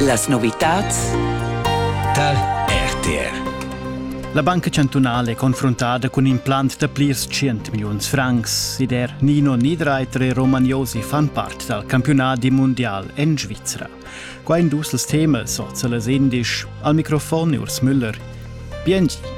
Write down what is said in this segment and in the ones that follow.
Las novitads tar RTR. La Banca chantunale è confrontata cun implant da plirs 100 milliuns francs ed er Nino Niederreiter e Roman Josi fan part dal campiunadi mundial en Svizra. Qua in dus las temas, oza las indisch, al microfon Urs Müller. Biengi!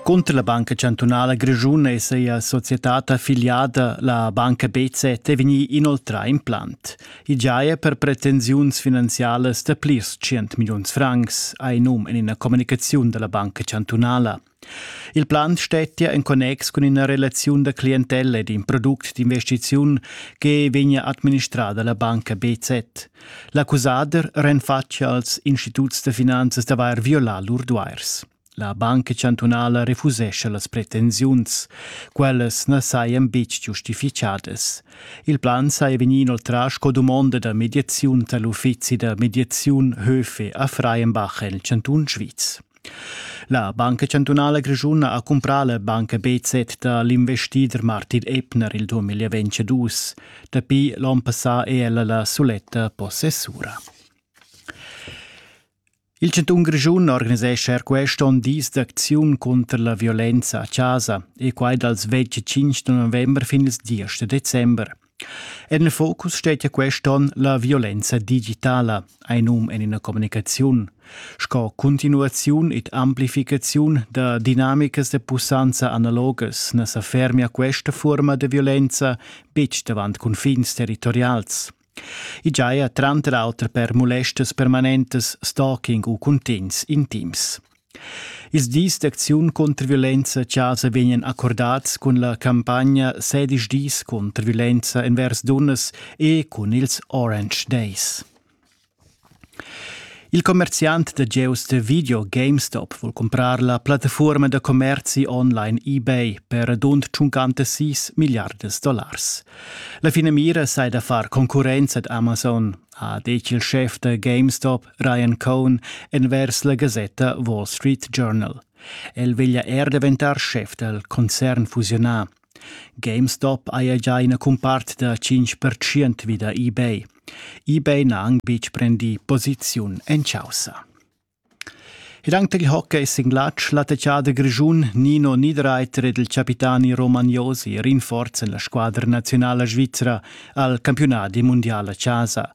Cunter la Banca chantunala grischuna è sia societad affiliada, la Banca BZ, è vegnì inoltrà in plant. I giaja per pretensiuns finanzialas da plirs 100 milliuns francs, ha in num en ina communicaziun da la Banca chantunala. Il plant stettia en connex cun ina relaziun da clientella ed in product d'investiziun che vegnia administrada la banca BZ. L'accusader renfatschia als instituts da finanzas d'avair violà lur duairs. La Banca chantunala refusescha las pretensiuns. Quellas na sajan betg giustifichadas. Il plan saja vegnì inoltrà sco dumonda da mediaziun tar l'uffizi da mediaziun Höfe a Freienbach en il chantun Sviz. La Banca chantunala grischuna ha cumprà la banca BZ da l'investider Martin Ebner il 2022. Dapi l'onn passà è ella la suletta possessura. Il chantun Grischun organisescha er quest onn dis d'acziun cunter la violenza a chasa e quai dals 25 november fin ils 10 december. En il focus stetia quest onn la violenza digitala, ein num en ina communicaziun, sco continuaziun ed amplificaziun da dinamicas de pussanza analogas na sa fermia questa forma de violenza betg davant confins territorials. I giaja tranter auter per mulestas permanentas, stalking u cuntegns intims. Ils dis d'acziun contr violenza-chasa vegnan accordats cun la campagna sedisch dis contr violenza envers dunnas e cun ils Orange Days. Il commerziant da gieus da video GameStop vul cumprar la plattafuorma da commerzi online eBay per radund 56 milliardas dollars. La finamira sei da far concurrenza ad Amazon, ha detg il chef da GameStop Ryan Cohn envers la gasetta Wall Street Journal. El veglia er daventar chef dal concern fusionà GameStop haja già ina cumpart da 5% vi da eBay. eBay n'ha anc betg prendì posiziun en chaussa. Ed anche il hockey singlatsch, l'attacciader grischun Nino Niederreiter ed il capitani Roman Josi rinforzan la squadra nazionala svizra al campiunat mundial a chasa.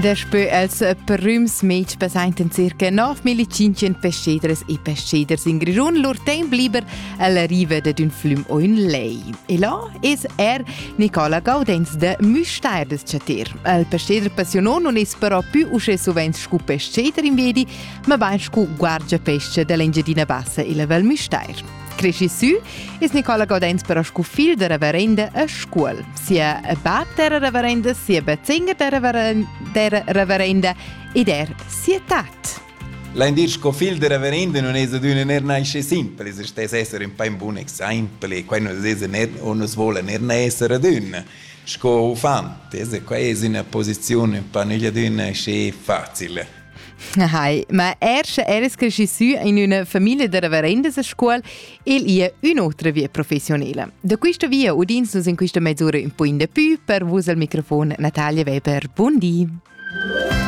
Daspö els prüms mez passaintan circa 9500 pesteders e pesteders in Grischun lur temp liber alla riva dad ün flüm o ün lej. E là es er Nicola Gaudenz da Müstair des Chater. El pesteder passionò non es però più uschè sovent scu pesteder in Vedi, ma bain scu guardia-pesce dall'Engiadina Bassa e la Val Müstair. Cresci sü es Nicola Godens però scu figl da reverenda a Scuol. Sia bab d'era reverenda, sia bezzinger d'era reverenda ed er sia tat. L'indir sco figl da reverenda non es ad üna ner nasce simpel, es stes esser un pa un bun exempel e quai nos es ner o nos vola ner nascer ad un sco uffant, es quai es üna posizione un pa negli ad un sce facile. Hai, ma erst eres cresci sü in üna famiglia da reverendas a scuol e ia ün'otra via professionela. Da quista via udins nus in quista mezz'ura un po in da pü per vus al microfon Natalia Weber. Buon di!